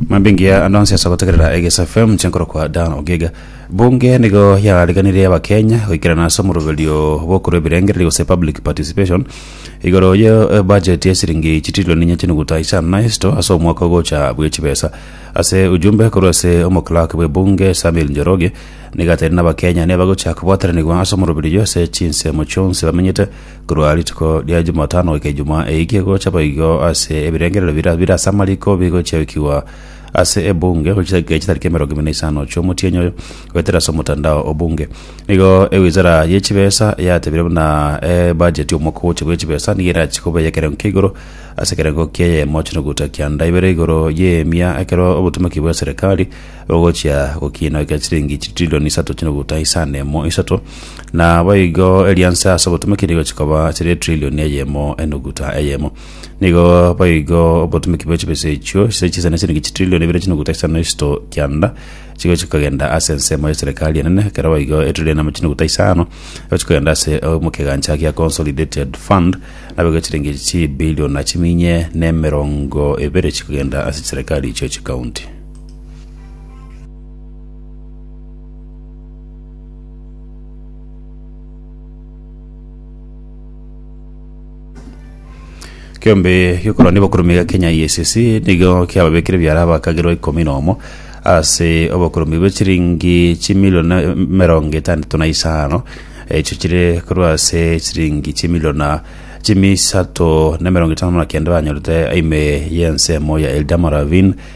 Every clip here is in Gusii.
mambingia ando ansiasa gotegerera egesa fm nchenkoroka dan ogiga bunge nigo yariganirie abakenya goikerana ase omoroberio bokorwa ebirengererio gose public participation igoro ye budget ya siringi chitilioni inye chinuguta isano na isto ase omwaka ogocha bwe chibesa ase ujumbe korwa ase omoclerk bwe bunge samuel njoroge nigateire nabakenya nebagocha kobwataranigwa ase omoroberio ase chinsemo chionsi bamenyete Korwa rituko ria Jumatano goika Ijumaa eike gocha boigo ase ebirengererio biria bire ase amariko bigochiaikigwa ase ebunge gochia chidakika chitari emerongo ime na isano chi'omotienyi oyo goetera ase omotandao obunge. Nigo ewizara ye chibesa yatebire buna ebudget y'omwaka ogocha bwe chibesa nigo erache koba eye ekerengo kia igoro ase ekerengo kieye mochie noguta kianda ibere igoro y'emia ekero obotomeki bwe serikali ogochia gokiinokia chiringi chitrilioni isato chinuguta isano emo isato, na boigo erianse ase obotumeki nigo chikoba chire etrilioni eyemo enuguta eyemo. Nigo boigo obotumeki bwe chibesa echio chire chisa ne chiringi chitrilioni ibere chinuguta isano isito kianda chigochia kogenda ase ensemo ya serikali enene, ekero boigo etrilioni emo chinuguta isano egochia kogenda ase omo kegancha gia Consolidated Fund, naboigo chiringi chibilioni na chiminye na emerongo ebere chikogenda ase chiserikali chio chikaunti. Kiombe gikorwa n'obokurume gia Kenya EACC nigo kiababekire biara abakagerwa ikomi nomo ase obokurume bwe chiringi chimilioni emerongo etandato na isano echo chire korwa ase chiringi chimiliona chimisato na emerongo etano na kenda banyorete aime y'ensemo ya Eldama Ravine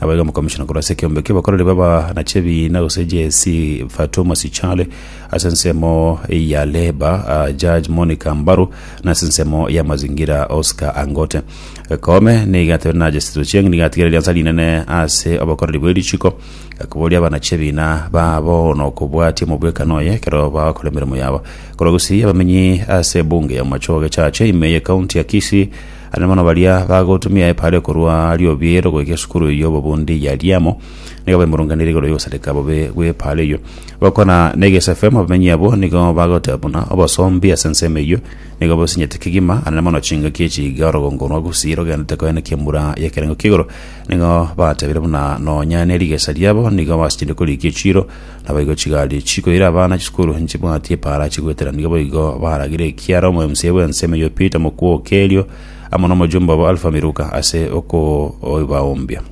Aba iga omokomishona korwa ase ekeombe ki'obokoreri b'abanache ebiina gose JSC Fatou Masichale ase ensemo ya Labour, Judge Monica Mbaru na ase ensemo y'amazingira Oscar Angote. Koome nigo atebire na Justice Ochieng nigo atigire eriansa rinene ase obokoreri bwe richiko, koboria abanache ebiina babo na okobwatia omobwekano oye ekero bagokora emeremo yabo. Korwa Gusii abamenyi ase ebunge ya Omochoo Gechache ime y'ecounty ya Kisii Aria mono baria bagotumia epaara ekorwa Riobiero goika esukuru eyio y'obobundi ya Liamo, nigo baimurunganirie igoro y'ogosareka bobe gw'epaara eyio. Gokwana negesefemu abamenyi abwo nigo bagoteba buna obosombi ase ensemo eyio nigo bosinyete kegima, aria mono chingaki echi iga orogongo rwa Gusii rogenderete koenekia emura y'ekerengo ki'igoro. Nigo batebire buna nonya nerigesa riabo nigo basichire korikia echiiro, Naboigo chigari chikoira abana chisukuru nchibwati epaara chigoetera nigo boigo baragire ekiara omoemsie bw'ense emeyo Peter Mokwoke erio amo nomojumbe obo Alpha Miruka ase okobaoombia.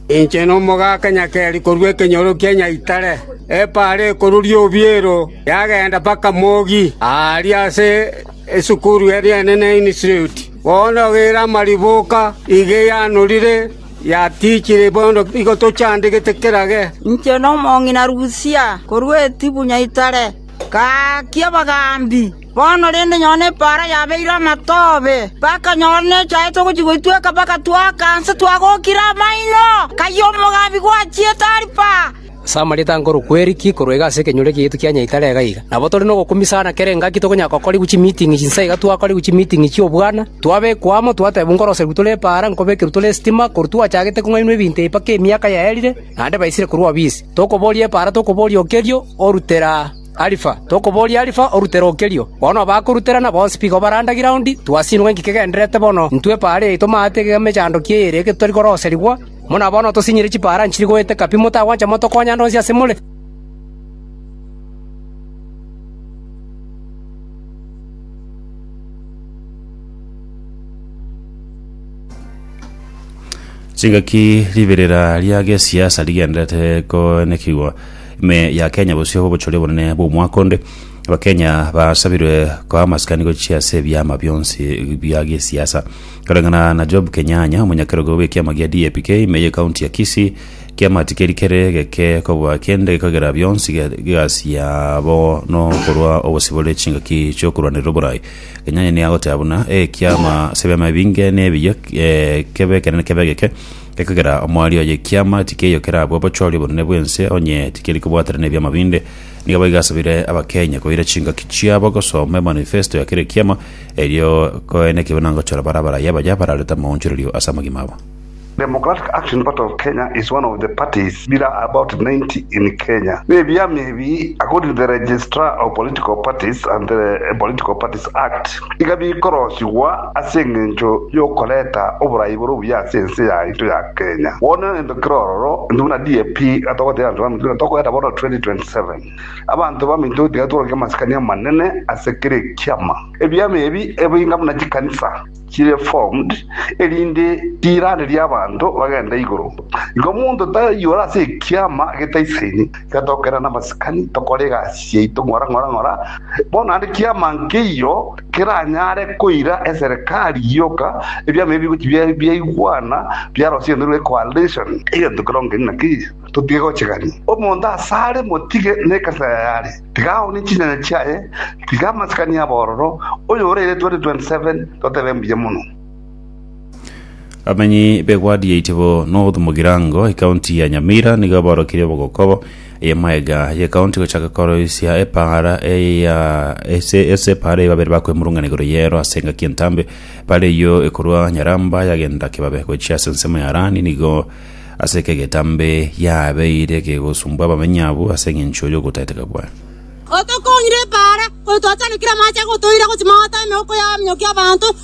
Inche nomogaka nyakeri korwa ekenyoro kia nyaitare, epaara ekoruria obiero yagenda mpaka mogi aaria ase esukuru eria enene Institute. Bono ogeire amariboka iga eyanorire “Yatichire bono, nigo tochandegete kerage.” “Inche nomong'ina Rusia, korwa Etibu nyaitare, gaaki abagaambi. Bono rende nyoo nepaara yabeire amatobe, mpaka nyoo nechaete ogochia goitweka mpaka twaaka nse twagokire amaino, kayio omogaambi gwachiete ari paa. Ase amarieta a nkoro kweriki korwa iga ase ekenyoro ekeyetu kia Nyaitare iga iga. Nabo tore nogokumia sana kera engaki tokonyara gokorigwa chimiiting'i chinsa iga twakorigwa chimiiting'i chi'obwana, twabekwa amo, twateebwa nkoroserigwe tore epaara, nkobekerwe tore esitima, korwa twachagete kong'ainwa ebinto ebi mpaka emiaka yaerire, naende baisire korwa obisi. Tokoboria epaara, tokoboria okerio, orutera Alifa, tokoboria Alifa, orutera okerio. Bono abakoruterana bonsi piga obarandage iraundi, twasiinwe ng'aki kegendererete bono, intwe epaara yaito maate egega emechando ki eyere ege totari koroserigwa, Buna bono tosinyire chipaara nchiri goeteka pi, motagwancha motokonya ande onsi ase more. Chingaki riberera ria gesiasa rigenderete koenekigwa ime ya Kenya bosio bobochori obonene bw'omwaka onde. Abakenya basabirwe koa amasikani gochia ase ebiama bionsi bia gesiasa. Koreng'ana na Job Kenyanya, omonyakerogo bw'ekiama gia DAPK ime y'ecounty ya Kisii, kiama tikeri kere geke kobua kende gekagera bionsi ge- gasi yabo nokorwa obosibore chingaki chiokorwanerera oborai. Kenyanya nigo agoteba buna ekiama ase ebiama ebinge nebiya eh, kebe ekenene kebe egeke gekagera omwari oye ekiama tikeiyo kerabwo obochori obonene bw'ense onye tikeri kobwatera nebiama binde Nigo boigo asabire Abakenya koira chingaki chiabo gosoma emanifesto ya kera ekiama, erio koe nekibe nagochora bare abaraiyo abaya bararete amaonchorerio ase amagima abo. Democratic Action Party of Kenya is one of the parties there are about 90 in Kenya. Nebiama ebi according to the Registrar of Political Parties and the Political Parties Act. iga bikorosigwa ase engencho y'okoreta oboraai bore obuya ase ense yaito ya Kenya. Bono egento kere ororo, intwe buna DAP iga togoteebia abanto baminto ng'a tokoreta bono 2027. Abanto baminto tiga tworokie amasikani amanene ase kera ekiama. Ebiama ebi ebe inga buna chikanisa chire formed erinde riiranerie abanto bagende igoro. Igo omonto tayiora ase ekiama getaisaini. Tiga togokenda namasikani, tokore egasi yaito ng'ora ng'ora ng'ora, bono naende kiama nkeiyo keranyare koira eserekari gioka, ebiama ebio bigochi biaigwana, biarosenerwe ecoalition, egento kerongo keria na keria. Totige gochegania. Omonto asare motige nekanisa yaye are, tiga aone chinyanya chiaye, tiga amasikani abororo, oyore eretwa 2027 totebe mbuya mono. Abamenyi b'egwadi ya Itibo North mu Girango, ekaunti ya Nyamira nigo baorokirie obogokobo y'emaega y'ekaunti gochaka koroisia epaara eya ase ase epaara eya babere bakwemurungana igoro y'ero ase engaki entambe bare eyio ekorwa Nyaramba yagenda Kibabe gochia ase ensemo ya Arani nigo ase eke egetambe yabeire kegosumbwa abamenyi abwo ase eng'encho y'ogotaeteka kwaye. Otokong'ire epaara, oyotwachanekire amache agotoira gochia magote 'emeoko y'abaminyokia abanto,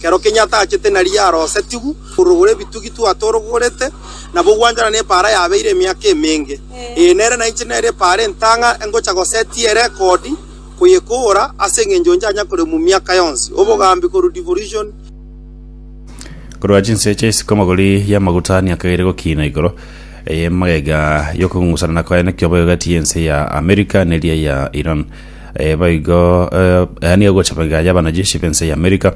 Kero kenyia atachete nari yarosetigwe korogora ebitugi twatorogorete, nabo gwanchorana nepaara yabeire emiaka emenge. Ee, nere nainche nere epaara entang'a engocha gosetia erekodi koyekoora ase engencho nchanya koremwa miaka yonsi. Obogambi korwa Devolution. Korwa chinse chia isiko amagori y'amaguta niakageire gokiina igoro y'emagega y'okong'usana na koenekio boigo egati y'ense ya Amerika neria ya Iran. Eh, boigo eh, yaani egocha boiga y'abanajeshi b'ense ya Amerika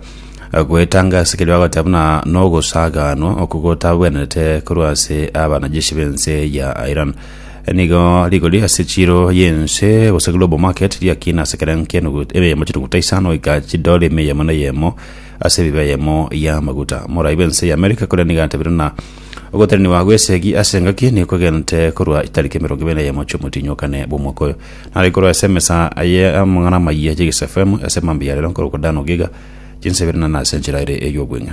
eh, goetanga ase kerio bagoteba buna nogosaganwa oko gotabwenerete korwa ase abanajeshi b'ense ya Iran Eh, nigo rigori ase chiro y'ense gose global market riakina ase kera nkenugu emeyemo chituguta isano goika chidore emeyemo na eyemo ase ebibe eyemo y'amaguta morai bw'ense ya Amerika koria nigo atabire na ogoteneniwa gw'esegi ase engaki nigo kogente korwa tariki emerongo ebere na eyemo ch'omotinyi okane bw'omwaka oyo Nare korwa ase emesa y'amang'ana amayia y'egesafemu ase mambia ya rero nkorokwa Dan Ogiga, chinsa ibere nane ase enchera ere ey'obweng'e.